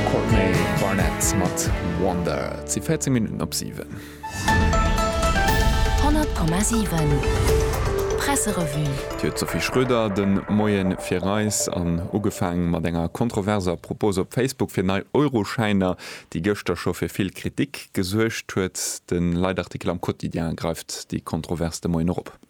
D'Courtney Barnett mat Wonder. Et si 14 Minutten op 7. 100,7 Presserevue. D'Sophie Schröder de Moie fir eis an ugefaang mat enger kontroverser Propos op Facebook fir nei Euroschäiner, déi gëschter scho fir vill Kritik gesuergt huet. De Leitartikel am Quotidien greift déi Kontrovers de Moien och op.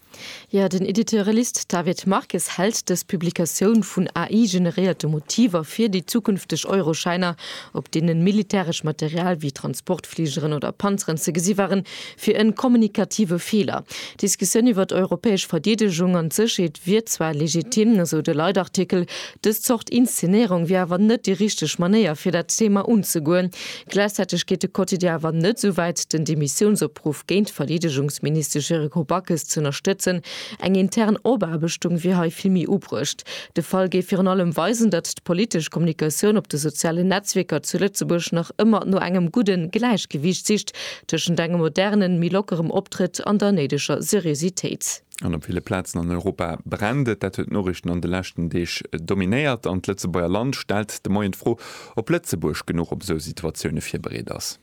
Jo, den Editeurelist David Marques hält dës Publikatioun vun AI-generéierte Motiver fir déi zukünfteg Euroschäiner, op deenen militäresch Material wéi Transportfligeren oder Panzeren ze gesi waren, fir en kommunikative Feeler. D'Diskussioun iwwer d'europäesch Verdeedegung an d'Sécherheet wier zwar legitim, esou de Leitartikel, dës Zort Inszenéierung wier awer net déi richteg Manéier fir dat Thema unzegoen. Gläichzäiteg geet de Quotidien awer net esou wäit, den Demissiounsopruff géint d'Verdeedegungsministesch Yrigo Backes z'ënnerstëtzen. Eng intern Opaarbechtung wier hei vill méi ubruecht. De Fall géif virun allem weisen, datt d'politesch Kommunikatioun op de sozialen Netzwierker zu Lëtzebuerg nach ëmmer no engem gudden Gläichgewiicht sicht tëschent engem modernen, méi lockerem Optrëtt an der néideger Seriositéit. An op ville Plazen an Europa brennt et. Dat huet d'Noriichten an de leschten Deeg dominéiert. An d'Lëtzebuerger Land stellt de Moien d'Fro, ob Lëtzebuerg genuch op esou Situatioune virbereet ass.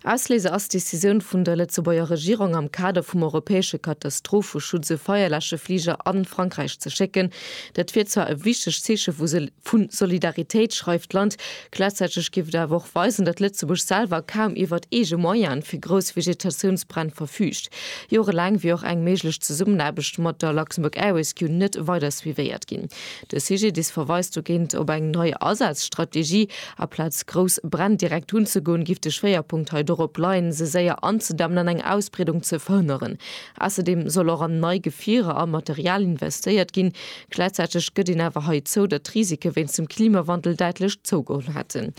Ausléiser ass d'Decisioun vun der Lëtzebuerger Regierung, am Kader vum europäesche Katastropheschutz e Feierläschefliger a Frankräich ze schécken. Dat wier zwar e wichtegt Zeeche vu Solidaritéit, schreift d'Land. Gläichzäiteg géif et awer och weisen, datt Lëtzebuerg selwer kaum iwwert eege Moyene fir grouss Vegetatiounsbränn verfüügt. Jorelaang wier och eng méiglech Zesummenaarbecht mat der Luxembourg Air Rescue net weider suivéiert ginn. De CGDIS verweist dogéint op eng nei Asazstrategie. Aplaz grouss Bränn direkt unzegoen, géif de Schwéierpunkt hei dorop leien, se séier anzedämmen an eng Ausbreedung ze verhënneren, Ausserdeem soll och an nei Gefierer a Material investéiert ginn. Gläichzäiteg gëtt een awer hei zou, datt d'Risike wéinst dem Klimawandel däitlech zougeholl hätten.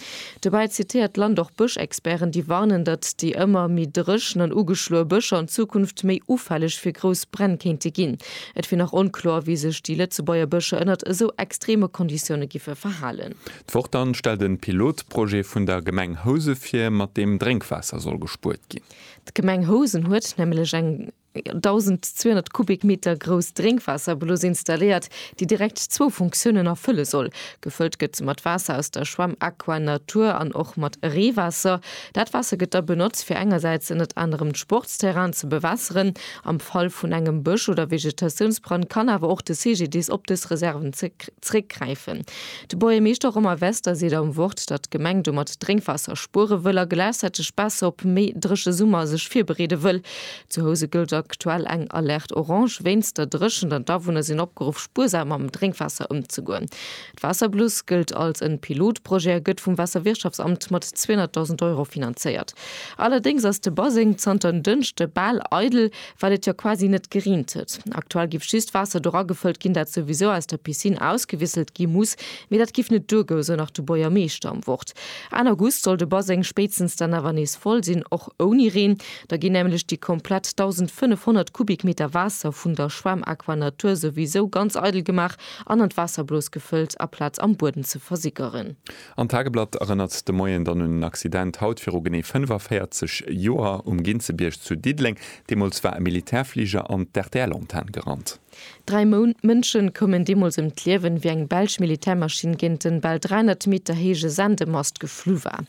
Dobäi zitéiert d'Land och Bëschexperten, déi warnen, datt déi ëmmer méi dréchen an ugeschloe Bëscher an Zukunft méi ufälleg fir grouss Bränn kéinte ginn. Et wier nach onkloer, wéi sech déi Lëtzebuerger Bëscher ënnert esou extreme Konditioune giffe verhalen. D'Woch dann stellt en Pilotprojet vun der Gemeng Housen vir, mat deem Drénkwaasser soll gespuert gin. D'Gemeng Housen huet nämlech eng 1.200 Kubikmeter grouss Drénkwaasserblus installéiert, déi direkt zwou Funktiounen erfëlle soll, gefëllt gëtt se mat Waasser aus der Schwämm Aqua Natur an och mat Reewaasser. Dat Waasser gëtt da benotzt, fir engersäits ënnert anerem d'Sportsterrainen ze bewässeren. Am Fall vun engem Bësch oder Vegetatiounsbrand kann awer och de CGDIS op dës Reserven zeréckgräifen. De Buergermeeschter Romain Wester seet am Wort, datt d'Gemeng domat Drénkwaasser spuere wëll a gläichzäiteg besser op méi dréche Summer sech virbereede wëll. Zu Housen gëllt aktuell eng Alerte orange wéinst der Dréchent an d'Awunner sinn opgeruff, spuersam mam Drénkwaasser ëmzegoen. D'Waasserbluss gëllt als en Pilotprojet a gëtt vum Waasserwirtschaftsamt mat 200.000 Euro finanzéiert. Allerdéngs ass de Baseng zanter en Dënschde bal eidel. well et jo quasi net gereent huet. Aktuell giff just Waasser dora gefëllt ginn, dat souwisou aus der Piscine ausgewisselt gi muss, mee dat giff net duergou, sou nach de Boiermeeschter am Wort. Enn August soll de Baseng spéitstens dann awer nees voll sinn, och ouni Reen. Da ginn nämlech déi komplett 1.500 Kubikmeter Waasser vun der Schwämm Aquanatur souwisou ganz eidel gemaach an an d'Waasserblos gefëllt, aplaz am Bueden ze versickeren. An d'Tageblatt erënnert de Moien dann un en Accident haut viru genee 45 Joer um Ginzebierg zu Diddeleng. Deemools war e Militärfliger an d'RTL-Antenn gerannt. Dräi Mënsche koumen deemools ëm d'Liewen, wéi eng belsch Militärmaschinn géint en bal 300 Meter héije Sendemast geflu war.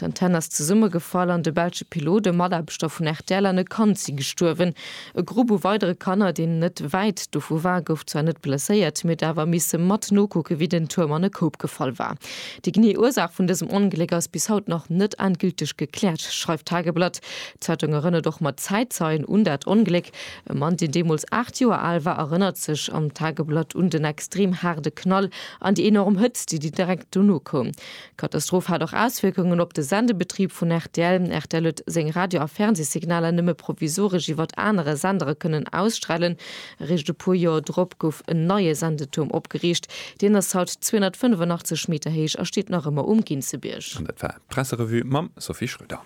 D'Antenn ass zesummegefall an de belsche Pilot, e Mataarbechter vun rtl an e Kand si gestuerwen. E Grupp u weidere Kanner, deen net wäit dovu war, gouf zwar net blesséiert, mee huet awer misse mat nokucken, wéi den Tuerm an e Koup gefall war. Déi genee Ursaach vun dësem Ongléck ass bis haut nach net endgülteg gekläert, schreift d'Tageblatt. D'Zeitung erënnert och mat Zäitzeien un dat Ongléck. E Mann, deen deemools 8 Joer al war, erënnert sech am Tageblatt un den extrem haarde Knall an déi enorm Hëtzt, déi direkt dono koum. D'Katastroph hat och Auswierkungen op de Sendebetrib vun rtl. Rtl huet seng Radio a Fernsee-Signaler nëmme provisoresch iwwert anere Sendere kënnen ausstralen. Eréischt e puer Joer drop gouf en neie Sendetuerm opgeriicht. Deen ass haut 285 Meter héich a steet nach ëmmer um Ginzebierg. An dat war d'Presserevue mam Sophie Schröder.